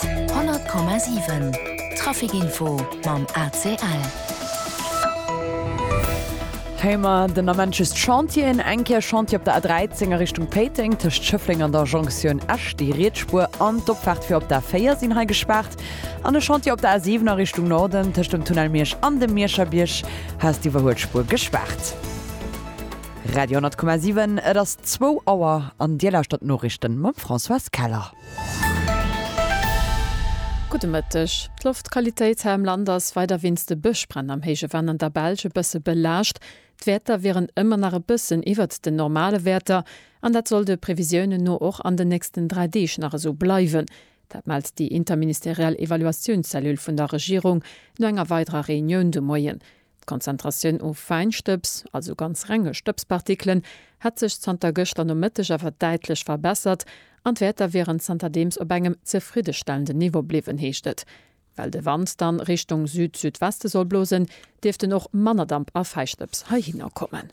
100,7 Trafic Info mam ACL. Hei mar den amenches Chantieren, eng Kéier Chantier op der A13 a Richtung Péiteng tëscht Schëffleng an der Jonktioun Esch. Déi riets Spuer an d'Opfaart fir op d'A4 sinn hei gespaart. An e Chantier op der A7 a Richtung Norden tëscht dem Tunnel Miersch an dem Mierscher Bierg has d'Iwwerhuelspur gespaart. Radio 10,7, et ass zwou Auer an Dir lauschtert d'Noriichten mam Françoise Keller. Gudde Mëtteg. D'Loftqualitéit hei am Land ass weider wéinst de Bëschbränn am héije Venn an der Belsch e bësse belaascht. D'Wäerter wieren ëmmer nach e bëssen iwwert den normale Wäerter an dat soll de Previsiounen no och an den nächsten dräi Deeg nach esou bleiwen. Dat mellt déi interministeriell Evaluatiounszellule vun der Regierung no enger weiderer Reunioun de Moien. D'Konzentratioun u Fäinstëbs, also ganz renge Stëbspartikelen, hätt sech zanter gëschter Nomëtteg awer däitlech verbessert an d'Wäerter wieren zanterdeems op engem zefriddestellenden Niveau bliwwen, heescht et. Well de Wand dann Richtung Süd-Südweste soll blosen, dierften och manner Damp a Fäistëbs heihinner kommen.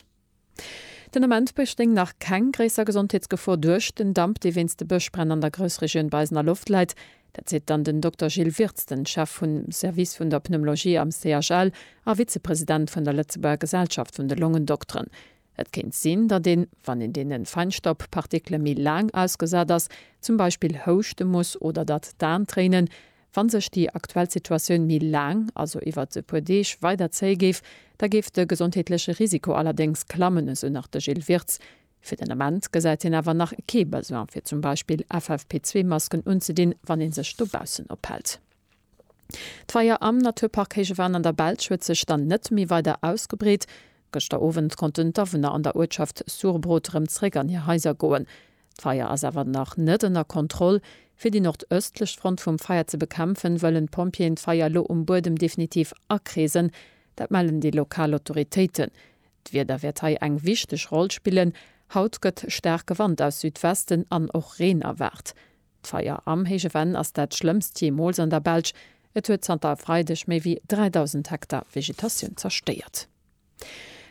Den Ament bestéing nach keng gréisser Gesondheetsgefor duerch den Damp, dee wéinst de Bëschbränn an der Groussregioun bei eisener Loft läit. Dat seet dann den Dokter Gilles Wirtz, den Chef vum Service vun der Pneumologie am CHL a Vizepresident vun der Lëtzebuerger Gesellschaft vun de Longendokteren. Et kéint sinn, datt een, wann een deene Feinstaubpartikele méi laang ausgesat ass, zum Beispill houschte muss oder datt d'Aan tréinen, Wann sech déi aktuell Situatioun méi laang, also iwwert e puer Deeg, weider zéie géif, da géif de gesondheetleche Risiko allerdéngs klammen, esou nach de Gilles Wirtz. Fir den Ament gesäit hien awer nach kee Besoin, fir zum Beispill FFP2-Masken unzedinn, wann ee sech dobaussen ophält. D'Feier am Naturpark Héije Van an der Belsch huet sech dann net méi weider ausgebreet. Gëschter Owend konnten d'Awunner an der Uertschaft Surbrot rëm zeréck an hir Haiser goen. D'Feier ass awer nach net ënner Kontroll. Fir déi nordëstlech Front vum Feier ze bekämpfen, wëllen d'Pompjeeën d'Feier elo um Buedem definitiv akreesen. Dat mellen déi lokal Autoritéiten. D'Wieder wäert hei eng wichteg Roll spillen. Haut gëtt staarke Wand aus Südwesten an och Reen erwaart. D'Feier am Héije Venn ass dat schlëmmst jeemools an der Belsch. Et huet zanter e Freideg méi wéi 3.000 Hektar Vegetatioun zerstéiert.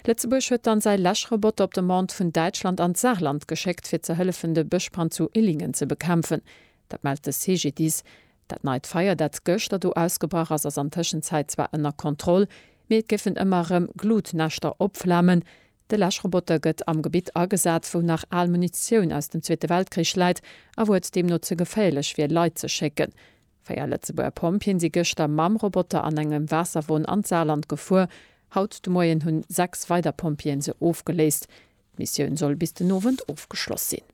Lëtzebuerg huet dann säi Läschroboter op Demande vun Däitschland an d'Saarland geschéckt, fir ze hëllefen de Bëschbrand zu Illingen ze bekämpfen. Dat mellt de CGDIS. Dat neit Feier, dat gëschter do ausgebrach ass, ass an Tëschenzäit zwar ënner Kontroll, mee et géifen ëmmer erëm Glutnäschter opflamen. De Läschroboter gëtt am Gebitt agesat, wou nach al Munitioun aus dem Zweete Weltkrich läit a wou et deemno ze geféierlech wier, Leit ze schécken. Véier Lëtzebuerger Pompjeeën si gëschter mam Roboter an engem Waasserwon an d'Saarland gefuer. Haut de Moien hunn 6 weider Pompjeeën se ofgeléist. D'Missioun soll bis den Owend ofgeschloss sinn.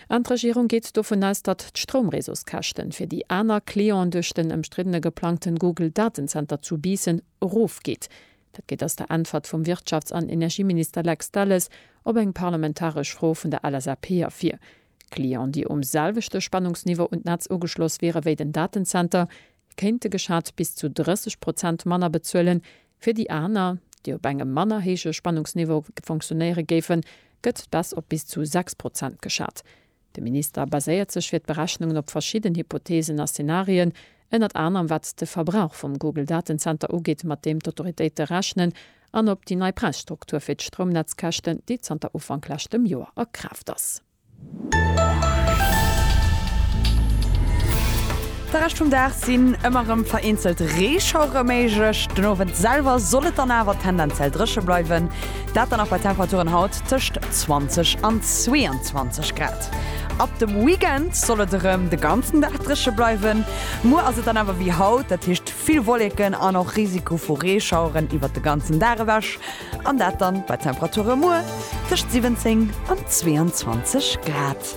An d'Regierung geet dovun aus, datt d'Stroumreseauskäschten fir déi aner Clienten duerch den ëmstriddene geplangten Google Datenzenter zu Biissen erof geet. Dat geet ass der Äntwert vum Wirtschafts an Energieminister Lex Delles op eng parlamentaresch Fro vun der LSAP ervir. Clienten, déi um selwechte Spannungsniveau un d'Netz ugeschloss wiere wéi den Datenzenter, kéinte geschat bis zu 30 Prozent manner bezuelen. Fir déi aner, déi op engem manner héije Spannungsniveau fonctionéiere géifen, gëtt d'Baisse op bis zu 6 Prozent geschat. De Minister baséiert sech fir d'Berechnungen op verschidden Hypotheesen a Szenarien, ënnert anerem wat de Verbrauch vum Google-Datenzenter ugeet, mat deem d'Autoritéite rechnen an op déi nei Präisstruktur fir d'Stroumnetzkäschten, déi zanter Ufank leschtem Joer a Kraaft ass. De Rescht vum Dag sinn ëmmer rem vereenzelt Reeschauere méiglech. Den Owend selwer soll et dann awer tendenziell drëche bleiwen, dat dann och bei Temperaturen haut tëscht 20 an 22 Grad. Ab dem Weekend soll et erëm de ganzen Dag drëche bleiwen. Muer ass et dann awer wéi haut, dat heescht Vill Wolleken an och Risiko vu Reeschaueren iwwert de ganzen Dag ewech, an dat dann bei Temperature muer tëscht 17 an 22 Grad.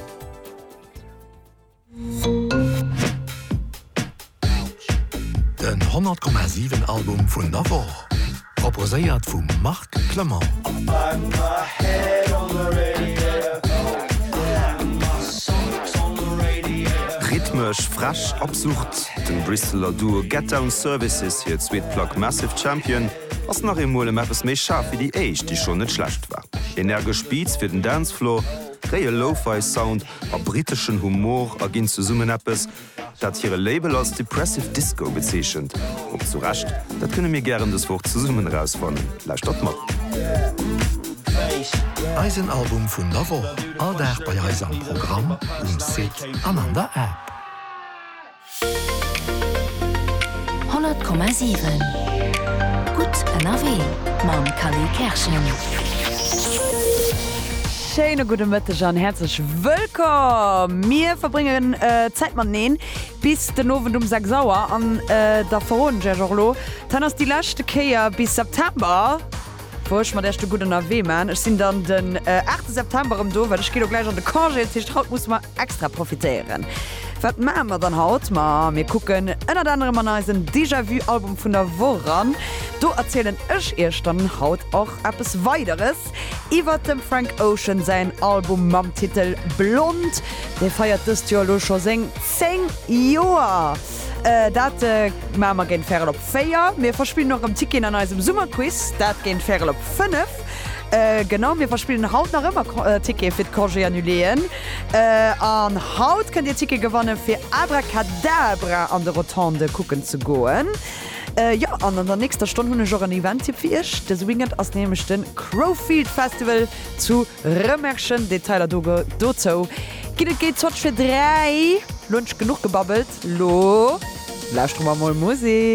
Den 100,7 Album vun der Woch. Proposéiert vum Marc Clement. Rhythmesch fresch absurd, dem Bristeler Duo Get Down Services hir zweet Plack Massive Champion ass nach eemol ëm eppes méi schaarf wéi déi éischt, déi schonn net schlecht war. Energesch Beats fir den Dancefloor, réie Lo-Fi Sound a briteschen Humor erginn zesummen eppes, Dat hire Label als Depressive Disco bezeechent. Op zu Recht. Dat kënne mir gären dës Woch zesummen erausfannen. Lauschtert mat. Eisen Album vun der Woch, all Dag bei eis am Programm, um Site an an der App. 100,7 Gutt ënnerwee mam Kali Kerschen. Schéine gudde Mëtteg an häerzlech wëllkomm! Mir verbréngen Zäit mateneen bis den Owend um 6 Auer an da verroden ech Iech och elo, d'Hen ass déi leschte Kéier bis September, wou ech mat Iech de gudden Awee maachen. Ech sinn dann den 8 September erëm do, well ech ginn elo gläich an de Congé. Dat heescht, haut musse mer extra profitéieren. Wat maache mer dann haut? Ma mir kucken ënnert anerem an eisen Déjà-vu-Album vun der Woch eran. Do erzielen ech Iech dann haut och eppes Weideres. Iwwert dem Frank Ocean säin Album mam Titel Blond. Dee feiert dëst Joer elo scho seng 10 Joer. Dat maache mer géint Värel op 4. Mir verspillen och erëm Ticketen an eisem Summerquiz, dat géint Värel op 5. Genau, mir verspillen haut nach ëmmer Tickete fir d'Congé annuléeën. An haut kënnt Dir Tickete gewanne fir Abrakadabra an de Rotondë kucken ze goen. Jo, an an der nächster Stonn hunn ech och en Event-Tipp fir Iech. Dëse Weekend ass nämlech de Crowfield Festival zu Rëmerschen. Detailer dozou ginn et géint Zotsch fir dräi. Lo hunn ech genuch gebabbelt, lo lauschteren mer mol Musek.